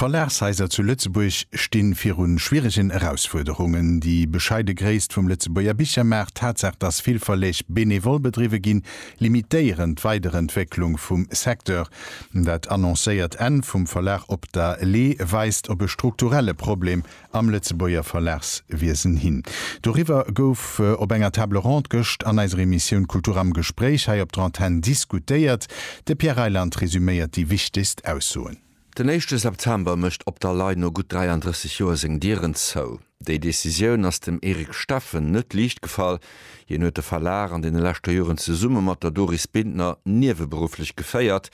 D'Verlagshaiser zu Lëtzebuerg sti viru schwieregen Erausfuerderungen. Déi bescheide Gréisst vum Lëtzebuerger Bichermaart, d'Tatsaach, datt vill Verleg benevol bedriwwe ginn, limitéieren d'Weiderentwécklung vum Secteur. Dat annoncéiert Enn vum Verlag Op der Lee weist op e strukturelle Problem am Lëtzebuerger Verlagswiesen hin. Doriwwer gouf op enger Table ronde gëscht an eiser Emissioun Kultur am Gespréich hei op der Antenn diskutéiert. De Pierre Reyland resüméiert déi wichtegst Aussoen. Den éischte September mécht op der Lay no gutt 33 Joer seng Dieren zou. Déi Decisioun ass dem Eric Steffen net liicht gefall. Hien huet de Verlag an deene leschte Joren zesumme mat der Doris Bintner nieweberufflech geféiert.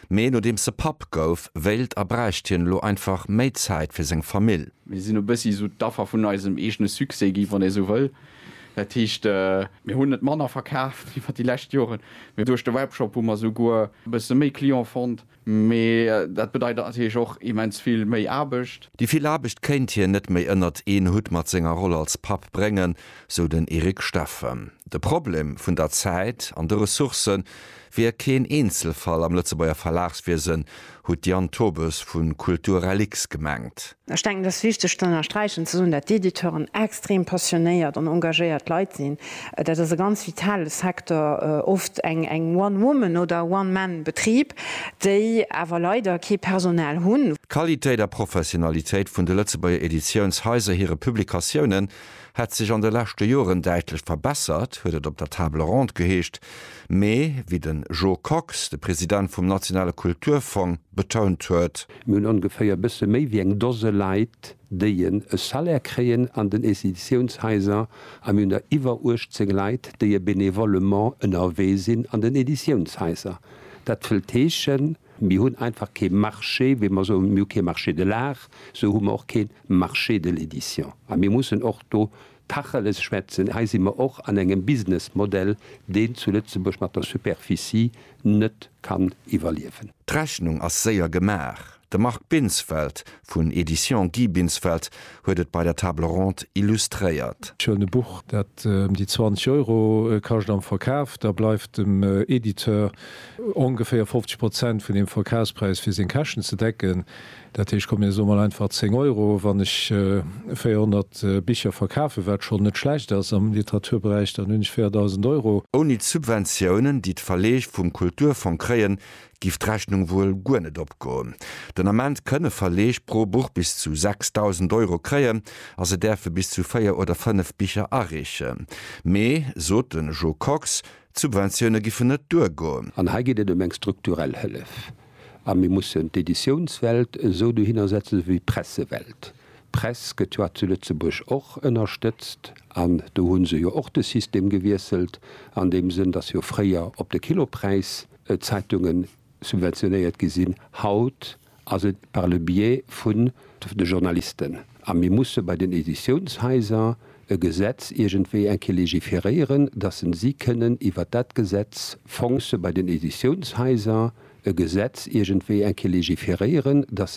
Mee nodeems e Papp gouf, wéilt a bräicht hien elo einfach méi Zäit fir seng Famill. Mir sinn e bëssi esou d'Affer vun eisem eegene Succès gi, wann ee esou wëll. Dat heescht, mir hunn net manner verkaaft iwwer déi lescht Joren, mee duerch de Webshop hu mer esouguer e bësse méi Client fonnt. Mee dat bedeit natierlech och immens vill méi Aarbecht. Déi vill Aarbecht kéint hien net méi ënnert een Hutt mat senger Roll als Papp bréngen, sou den Eric Steffen. De Problem vun der Zäit an de Ressourcë wier keen Eenzelfall am Lëtzebuerger Verlagswiesen, huet d'Diane Tobes vu Kulturrelix gemengt. Ech denken, et ass wichteg z'ënnersträichen, ze soen, dat d'Editeuren extrem passionéiert an engagéiert Leit sinn. Dat ass e ganz vitale Secteur, oft eng One Woman oder One Man Betrib, déi awer leider kee Personal hunn. D'Qualitéit a Professionalitéit vun de Lëtzebuerger Editiounshaiser hire Publikatiounen hätt sech an de leschte Joren däitlech verbessert, huet et op der Table ronde geheescht. Mee wéi den Jo Kox, de President vum nationale Kulturfong, betount huet. Mir hunn ongeféier e bësse méi wéi eng Dose Leit, déi en e Salaire kréien an den Editiounshaiser a mir hunn der iwwer 18 Leit, déi e bénévolement ënnerwee sinn an den Editiounshaiser. Dat wëllt heeschen. Mir hunn einfach kee Marché, wéi mer soen, mir hu kee Marché de l'art, esou hu mer och kee Marché de l'édition. A mir mussen och do Tacheles schwätzen. Hei si mer och an engem Businessmodell, deen zu Lëtzebuerg mat der Superficie net kann iwwerliewen. D'Rechnung ass séier gemaach. De Marc Binsfeld Vun Editions Guy Binsfeld huet et bei der Table Ronde illustréiert. Schöne Buch, dat em déi 20 Euro kascht am Verkaf. Da bleift dem Editeur ongeféier 50 Prozent vun dem Verkafspräis fir seng Käschten ze decken. Dat heescht, komm mir soe mol einfach 10 Euro wann ech 400 Bicher verkafen, wat schonn net schlecht ass am Literaturberäich, dann hunn ech 4.000 Euro. Ouni d'Subventiounen, déi d'Verleeg vum Kulturfong kréien, giff d'Rechnung wuel guer net opgoen. Den Ament kënne Verleeg pro Buch bis zu 6.000 Euro kréien a se däerfe bis zu 4 oder 5 Bicher areechen. Mee, sot de Jo Kox, d'Subventioune giffen net duergoen. An hei geet et ëm eng strukturell Hëllef. A mir mussen d'Editiounswelt esou dohinner setzen wéi d'Pressewelt. D'Press gëtt jo zu Lëtzebuerg och ënnerstëtzt an do hu se jo och de System gewiesselt an deem Sënn, datt jo fréier op de Kilopräis, Zeitungen subventionéiert gi sinn. Haut ass et par le biais vun de Journalisten. A mir musse bei den Editiounshaiser e Gesetz iergendwéi eng Kéier légiféréieren, dass en si kënnen iwwert dat Gesetz fonce bei den Editiounshaiser e Gesetz iergendwéi eng Kéier légiféréieren, dass